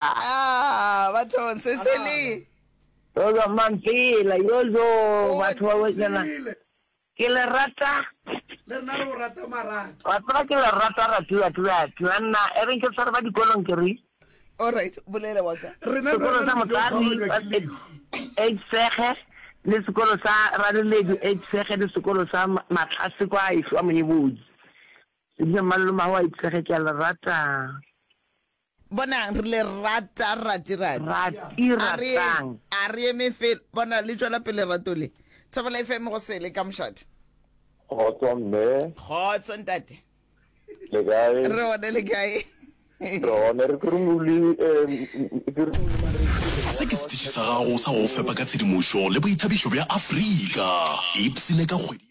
Aah bathong se se le. Yozo Mampela yozo batho ba wetsena ke le rata. Le rena re o rata marata. Wa tseba ke le rata ratiwa ke batho ba nna e reng ke tshware ba dikolong ke re. Alright bolela wa ka. Rena le wena le tlile go kgaoganywa ke lehu. Age Sege le sekolo sa Raleledu Age Sege le sekolo sa Matlase kwa Ešo wa Moebodi. Ke dula Mmalolo Mahowa Age Sege ke a le rata. Bonang, re le rata, Ratirati. Rati, A re, ratang. a re eme fela. Bona, le tšwela pele lerato le. Thobela FM go sele, ka mošate. Kgotso mme. Kgotso ntate. Le kae? Re gone le kae? Re gone re kurumuli Se ke setiši sa gago sa go fepa ka tshedimošo le boithabišo bja Afrika. Ipsine ka kgwedi ya.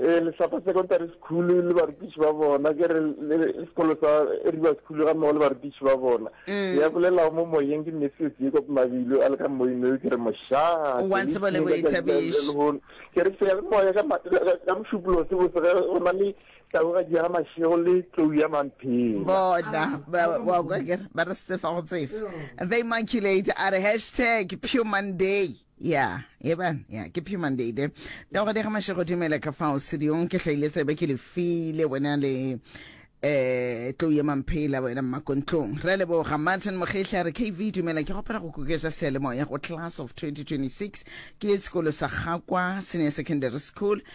Ee, Lehlapa Secondary School le barutiši ba bona, ke re le sekolo sa River School ga mmogo le barutiši ba bona. Mm. Ya bolelago mo moyeng ke Matthew Jacob Mabilo a le ka moyeng no ke re mošaa. Wa ntseba le boithabiši. Ke re se moya ka ka mošupolo se botse ge go na le taboga di ga mašego le tlou ya mamphela. Bona ba wa kwa ke ba re se fa go tsefa. The Immaculate are hashtag Pure Monday. ya eba ya ke phima ndeide tago dega mashego dumela ka fao sediyong ke hlaile tsebe ke le file wena le eh tlo ye mamphela wena mmakontlong re leboga martin mogehla re kv dumela ke gopela go kuketša sealemoya go class of 2026 ke ye sekolo sa gakwa senior secondary school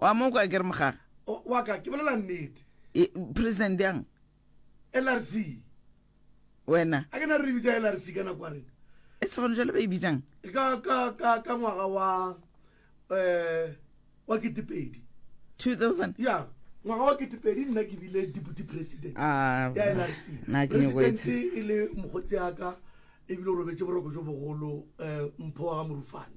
Wa mo kwa ke re mogaga? O, wa ka, ke bolela nnete. E, President yang? LRC. Wena. A ke na re bitsa LRC ka nako ya rena. E se gone jalo ba e bitsang? Ka, ka, ka, ka ngwaga wa, eh, wa ketepedi. 2000? Ya, ngwaga wa ketepedi nna ke bile deputy president Ah, ya LRC. na ke nyoko e tshe. President e le mogotsi ya ka, ebile o robetse boroko jo bogolo, eh, Mpho wa ga Morufane.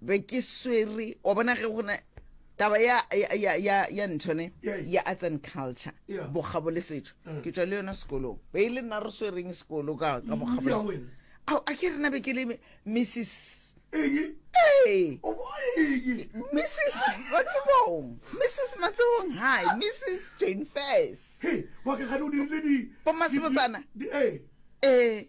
be ke swere wa bona ge gona taba ya ya ya ya ntshone ya arts and culture bokgabo le setso mm. ke tswa le yona sekolong be e le nna re swereng sekolo ka ka bokgabo ao a ke rena be ke le mrs mrs matsebong mrs matsebong hi mrs jane fas bomasebotsana ee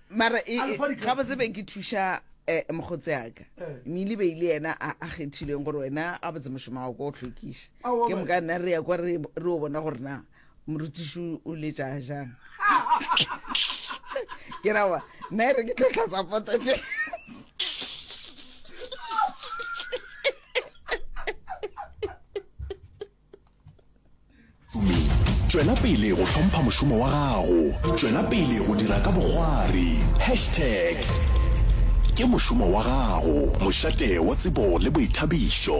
mara e, e, ga botse be ke thuša eh, mokgotse aka eh. mmele be ile yena a kgethileng gore wena a botse mošomo wa ko o tlhokiša ke moka nna re ya kwa re o bona gore na morutiši o letša jang ke rawa nna e re ke tlhotlhatsa poto je Tšwela pele go hlompha mošomo wa gago. Tšwela pele go dira ka bogwari. Hashtag Ke mošomo wa gago, mošate wa tsebo le boithabišo.